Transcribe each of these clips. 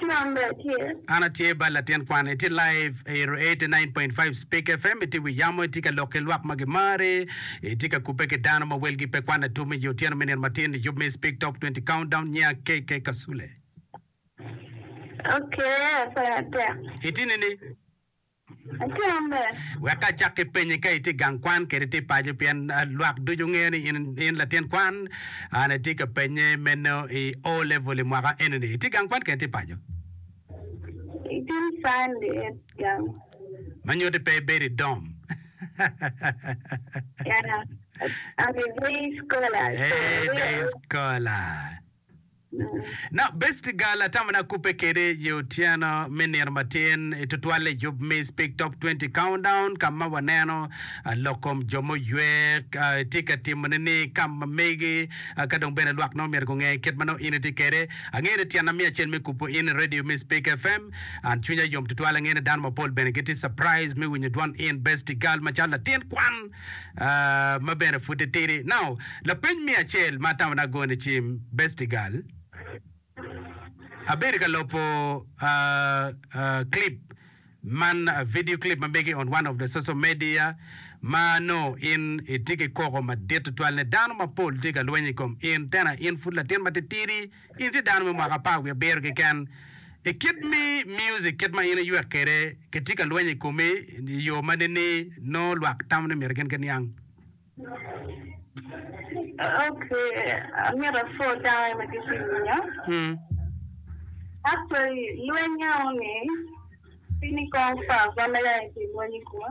Tyen re tye. An atye bal latin kwan. Itye live I ero 89.5 Speke FM itye wi yamo itye ka lok ki lwak ma gimari itye ka kubbe ki dano ma welgi pe kwan atum iyi otyeno me nino matin iyub me Speke Top 20 Countdown nyinga KK Kasule. Okay, akwena tek. Itye nini? Wek acak ki penyi ka itye i gang kwan kede tye paco pien lwak ducu ngeyo ni in latin kwan. An atye ka penye meno i O level i mwaka eni ni itye i gang kwan kede tye paco? Ma nyuti pe ibedo i dom. Eeh day scholar. Dok Besti ga latam na kubbe kede ye otyeno me nino matin i tutwalle yub me Speak Top 20 Countdown ka ma waneno lok kom jo muywe tye ka timone ni ka ma megi ka dong bene lwak nongo myero gunge kit ma nongo in itye kede. Angeyo ni tyena miyo acel me kubo in i radio me Speak FM. An cwinya yom tutwal angeyo ni dano mapol bene gitye surprise me winyo dwan in Besti Gal macalo latin kwan. ma bene pud titidi. Now, lapeny me acel ma atamona agone i cim, Bestigal, abedo ka lopo clip man, video clip ma mege on one of the social media ma nongo in itye ki koko madit tutwal ni dano mapol tye ka lweny i kom in, tena in pud latin ma titidi. In tye dano me mwaka apar wiye abiro keken. I kit me music kit ma in iywek kwede, kitye ka lweny i komi i yo ma nining? Nongo lwak tamo ni myero gin ki niang. Ok, amyero apwod dano aye ma tye ki winyo. Actually, lweny-nyawa-ni, pi ni kong pa, wan aye ki lweny i koma.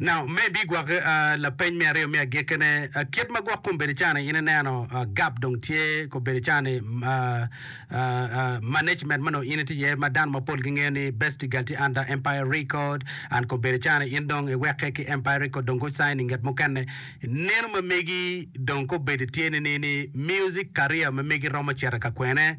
Now, me bi gwaki lapeny me aryo me agikene, kit ma gwok kom bedi cani in ineno gap dong tye ko bedi cani management mano in itye iye ma dano mapol gi ngeyo ni Bestigal tye under Empire Record and ko bedi cani in dong iweke ki Empire Record dong go sign inget mukene neno ma megi dong ko bedi tye ni ni music career ma megi romo cito ka kwene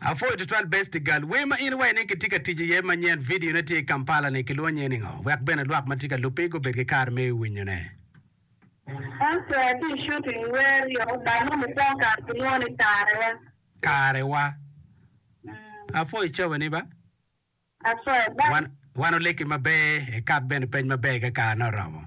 Apwoyo tutwal Best Gal. Wer ma in iwaco ni kitye ka tic iye manyen, vidio ne tye i Kampala ni, kilwongo nyinge ni ngo? Wek bene lwak ma tye ka lubbi gubed ki kare me winyo ne. Pastor atye i shooting wer yo gang mo mukwo kare kilwongo ni kare wa. Kare wa. Apwoyo cawa ni ba. Apwoyo bye. Wan oleki maber, ikat bene peny maber ka kare ne oromo.